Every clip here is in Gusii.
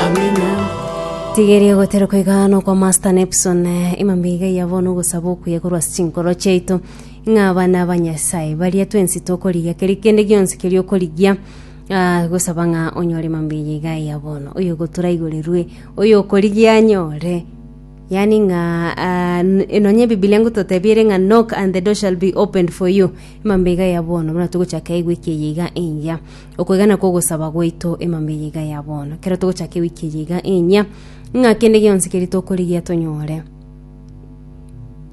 Amina. Tigeria goterwa koigana okwa Master Nepson, imambe iga yabona ogosaba okuya korwa ase chinkoro chiaito, ng'a abana ba Nyasae baria twensi tokorigia keri kende gionsi keria okorigia, ah, gosaba ng'a onyore imambe eye iga ya bono, oyo ogotoraigorirwe, oyo okorigia anyore. Yaani ng'a ah, n- e, nonye ebibilia ngototebia ere ng'a knock and the door shall be opened for you, imambe iga ya bono, buna togochaka egwiki eye iga engiya. Okwegena kw'ogosaba gwaito emambia eye iga ya bono, ekero togochaka ewiki eye iga enyia, ng'a kende gionsi keria tokorigia tonyore,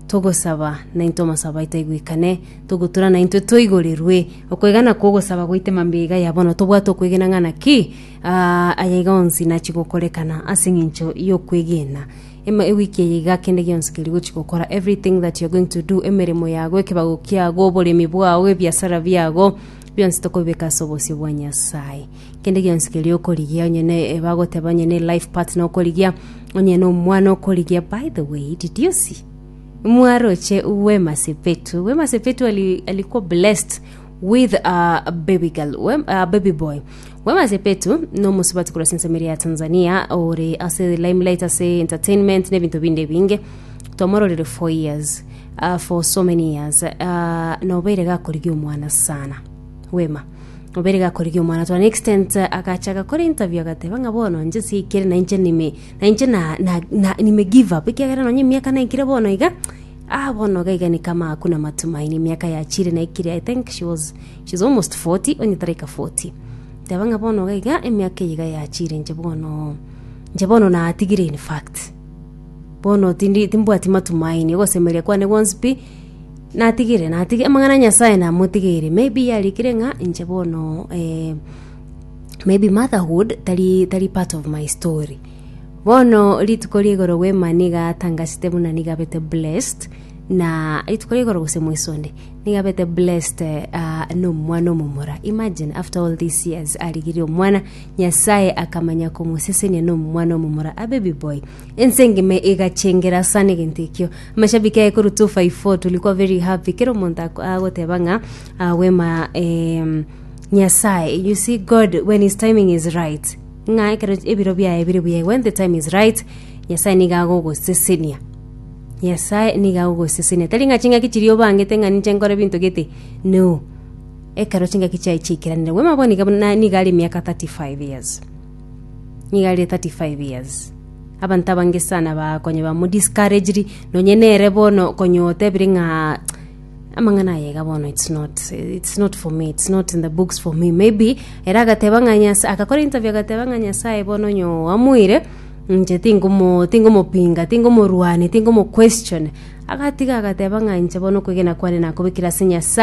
togosaba naintwe amasabo aito aigwekane, togotura naintwe toigorirwe. Okwegena kw'ogosaba gwaito emambia eye iga ya bono, tobwate okwegena ng'a naki aya iga onsi nachia gokorekana ase eng'encho y'okwegena. Ema ewiki eye iga kende gionsi keria ogochia gokora, everything that you're going to do, emeremo yago, ekebago kiago, oboremi bwao, ebiasara biago, Bionsi tokobibeka ase obosio bwa Nyasaye. Kende gionsi keria okorigia, onye ne bagoteba onye ne life partner okorigia, onye na omwana okorigia. By the way, did you see? Mwaroche Wema Sepetu. Wema Sepetu ali, alikuwa blessed with a baby girl, Wem- a baby boy. Wema Sepetu nomosubati korwa Sensamiri ya Tanzania ore ase limelight ase entertainment n'ebinto binde ebinge twamororire for years uh, for so many years uh, nobeire gakorigia omwana sana Wema obere gakorigia omwana to an extent eh, agacha agakora interview agateba ng'a bono nche sikere na inche nime na inche na, na, na, nime give up ekiagera nonye emiaka naikire bono iga Ah, bono gaigani kama hakuna matumaini. Emiaka yachiire na ikire, I think she was, she's almost 40, onye taraika 40. Teba ng'a bono gaiga emiaka eyiga yachiire inche bono, inche bono natigire in fact. Bono tindi timbwati matumaini, ogosemeria kwane gwonsi pi, natigire, natigire, amang'ana a Nyasae namotigeire. Maybe yarikire ng'a inche bono eh, maybe motherhood tari, tari part of my story. Bono rituko ria igoro bwema niga atangasete buna nigo abete blessed, na rituko ria igoro gose mweso onde, nigo abete blessed ah, nomwana omomura. Imagine after all these years arigirie omwana, Nyasaye akamanya komosesenia nomwana omomura, a baby boy. Ense engima igachengera sana egento ekio. Amashabiki aye koru 254 tulikuwa very happy. Kera omonto ako- agoteba ng'a ah, bwema em, Nyasaye, you see God when his timing is right. Ng'a ekero ebiro biaye bire buya, when the time is right, Nyasae nigo agogosesenia. Nyasae nigo agogosesenia. Tari ng'a ching'aki chiria obangete ng'a ninche nkore binto gete, no. Ekero ching'aki chiaye chiaikeranire. Bwema bono niga buna- nigo are emiaka 35 years. Nigo are 35 years. Abanto abange sana bakonya bamodiscouragiri, nonye nere bono konya otebire ng'a amang'ana aye iga bono it's not it's not for me it's not in the books for me maybe era agateba ng'a nyasaye agakora interview agateba ng'a nyasaye bono nyo amuire nche tingomo tingomopinga tingomorwani tingomo question agatiga agateba ng'a nche bono okwegena kwane nakobekire ase nyasaye